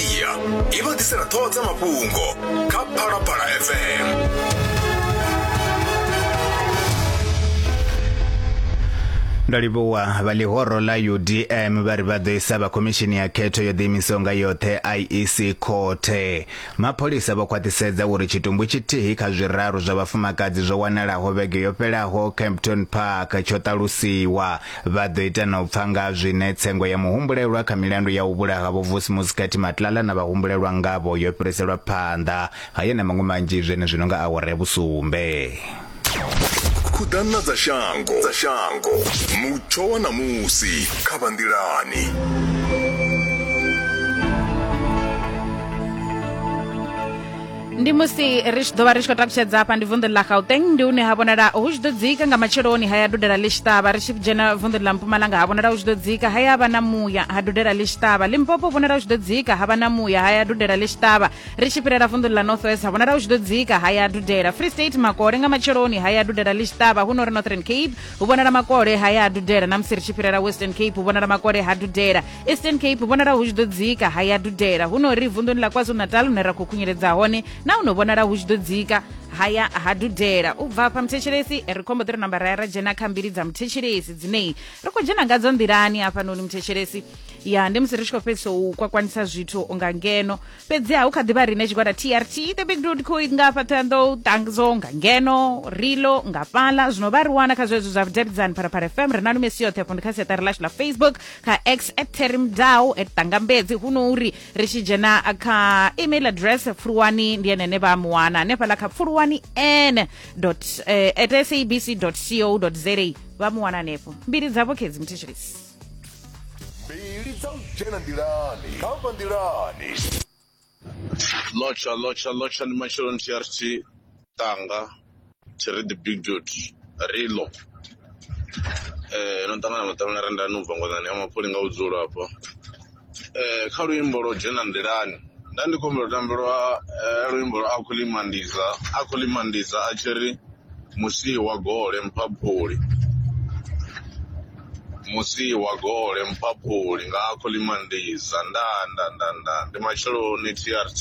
iya i vha ḓisela ṱhoho dza mafhungo kha phalaphala fm ndo livhuwa vha ḽihoro ḽa udm vha ri vha ḓo isa vha khomishini ya khetho yo ḓiimisaho nga yoṱhe iec khothe mapholisa vho khwaṱhisedza uri tshitumbu tshithihi kha zwiraru zwa vhafumakadzi zwo wanalaho vhege yo fhelaho campton park tsho ṱalusiwa Vha ḓo ita na u pfa nga ha zwine tsengo ya muhumbulelwa kha milandu ya u vhulaha Vho Vusi Muskati Matlala na vhahumbulelwa ngavho yo fhiriselwa phanḓa hayo na maṅwe manzhi zwenezwino nga awara ya vhusumbe. Khuḓano dza shango dza shango mutsho wa ṋamusi kha vha nḓilani. ndi musi ri tshi ḓo vha ri tshi khou takutshedza hafha ndi vunḓu ḽa gauteng ndi hune ha vhonala hu tshi ḓo dzika nga matsheloni haya dudela ḽi tshi ṱavha ri tshi dzhena vunḓu ḽa mpumalanga ha vhonala hu tshi ḓo dzika haya vha na muya ha dudela ḽi tshi ṱavha limpopo vhonala hu tshi ḓo dzika ha vha na muya haya dudela ḽi tshi ṱavha ri tshi fhirela vunḓu ḽa north west ha vhonala hu tshi ḓo dzika haya dudela free state makole nga matsheloni haya dudela ḽi tshi ṱavha hu no ri northern cape hu vhonala makole haya dudela na musi ri tshi fhirela western cape hu vhonala makole ha dudela eastern cape vhonala hu tshi ḓo dzika ha ya dudela hu no ri vunḓuni ḽa kwazulu-natal hune ra khou khunyeledza hone na hu no vhonala hu tshi ḓo dzika haya ha dudela u bva fha muthetshelesi ri khombo ḓi ri namba ra ya ra dzhena kha mbili dza muthetshelesi dzineyi ri khou dzhena ngadzo nḓilani hafhanoni muthetshelesi ya ndi musi ri tshi khou fhedzisa u kwakwanisa zwithu nga ngeno fhedzi ha hu kha ḓivha rine tshigwada trt the big dud kho nga fha thoyando tangzo nga ngeno rilo nga fhala zwino vha ri wana kha zwezwo zwa vhudavhidzani phalaphala fm ri na lumesi yoṱhe fo ndi kha siaṱari ḽashu ḽa facebook kha x at terry mdau at tangambedzi huno uri ri tshi dzhena kha email address pfuluwani ndi enene vha muwana hanefhaḽa kha pfuluwani n dot eh, at sabc dot co dot za vha muwana hanefho mbili dzavho khedzi muthetshelisi mbili dza u dzhena nḓilani kha vha nḓilani lotsha lotsha lotsha ndi matsheloni tshi ya ri tshi tanga tshi ri the big dot rilo eh no ṱangana maṱangana re ndani ubva ngwanani ya mapfholi nga vhudzulo hafha eh kha luimbo lwo dzhena nḓilani nda ndi khombela tambelwa luimbo lwa a khou ḽimandiza a khou ḽimandiza a tshi ri Musii wa gole mphaphuli Musii wa gole mphaphuli nga akho ḽi mandiza nda nda nda nda ndi matsheloni TRT.